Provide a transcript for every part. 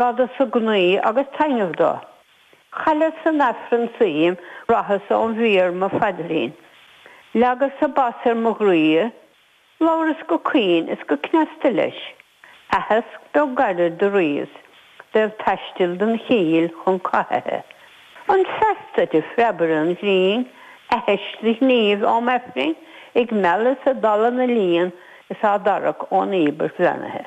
fada sa gnaoi agus taitneamh do. Chailleas san Aifreann suim bhraitheas ón bhfíor mo phaidrín. Leagas-sa bas ar mo dhraoi is labhras go caoin is go cneasta leis. Aitheasc beag gairid do ríomhas bheith ag taisteal don chill chun cathaithe. An feas duit a phreabaire an ghrinn, aithis do ghníomh am Aifrinn, ag mealladh is ag dalladh na líon is á dtarrac ón íobairt bheannaithe.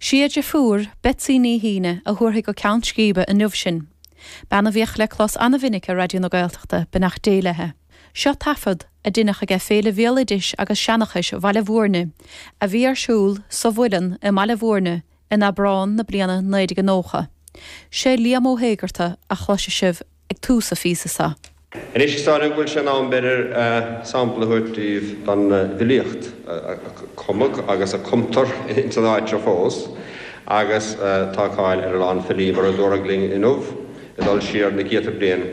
Sí a deirfiúr, Betsy Ní Shuibhne, a thabharfaidh go ceann scríbe inniu sinn. Bean a bhíodh le clos an-mhinic ar Raidió na Gaeltachta, beannacht Dé léithe. Seo taifead a deineadh aige Féile Bhéaloidis agus Seanchais Bhaile Mhúirne, a bhí ar siúl sa Mhuileann i mBaile Mhúirne in Aibreán na bliana 1990. Sé Liam Ó hÉigearta a chloisfidh sibh. ag tús an phíosa so. Anois is dóigh liom go bhfuil sé in am b'fhéidir sampla a thabhairt daoibh den bhfilíocht a cumadh agus a cumtar ins an áit seo fós agus tá cáil ar a lán filí mar a dúradh linn inniu ag dul siar na céadta bliain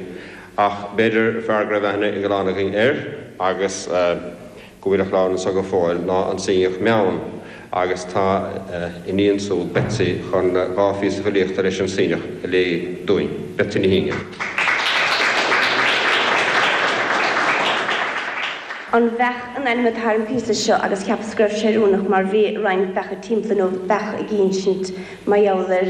ach b'fhéidir fear go raibh aithne ag a lán againn air agus go bhfuil a chlann anseo go fóill ná an Suibhneach Meann agus tá a iníon siúd, Betsy, chun dhá phíosa filíochta leis an Suibhneach a léamh dúinn. Betsy Ní Shuibhne. An bheach an ainm atá ar an píosa seo agus cheapas go raibh sé oiriúnach mar bhí roinnt beacha timpeall inniu beach ag insint mar gheall ar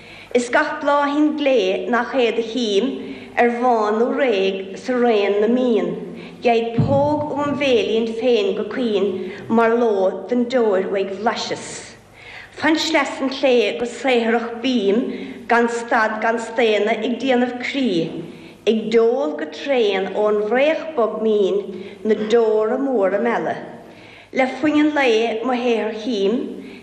Is gach bláithín glé nach é do chím, ar bhán nó réidh sa raon na mbíonn, gheibh póg óm bhéilín féin go caoin mar ló don deoir uaidh bhlaiseas. Fan sleas an tsléibhe go saothrach bím gan stad gan staonadh ag déanamh crí, ag deol go tréan ón bhfraoch bog mín na deora móra meala. Le faoithin lae mo shaothar chím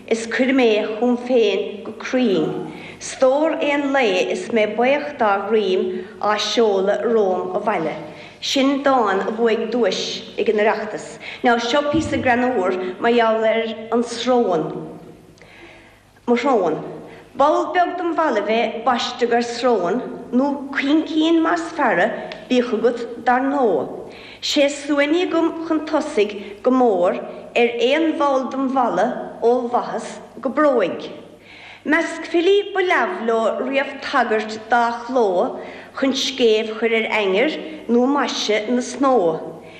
is cuirim é chugam féin go cruinn, stór aon lae is mé baoch dá dhruim á seoladh romham abhaile. Sin dán a bhuaigh duais ag an Oireachtas. Now seo píosa greannúr mar gheall ar an srón. mo shróin. Ball beag dem bhallaibh a baisteadh air srón, nó caincín más fearra bíodh agat dar ndóigh. Sé suaithní agam chun tosaigh go mór ar aon bhall dem bhallaibh ó bhaitheas go bróig. Measc filí ba leamh leo riamh tagairt dá chló chun scéimh chur ar ainnir nó maise na snó.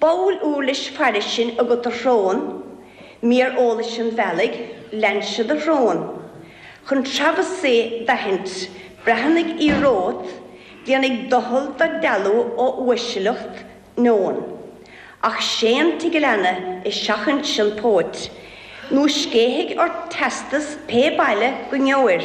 Baol uirlis fairis sin agat a shrón, Mír eolais an bhealaigh, leansa do shrón, Chun Travis Say d'aithint, breathnaigh í romhat, Déanfaidh doicheall do dealú ó uaisleacht neoin, Ach séan tigh an leanna is seachain an phóit, Nó scéithfidh ort teastas pé baile go ngeobhair,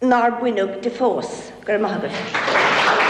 nár baineadh di fós. Go raibh maith agat.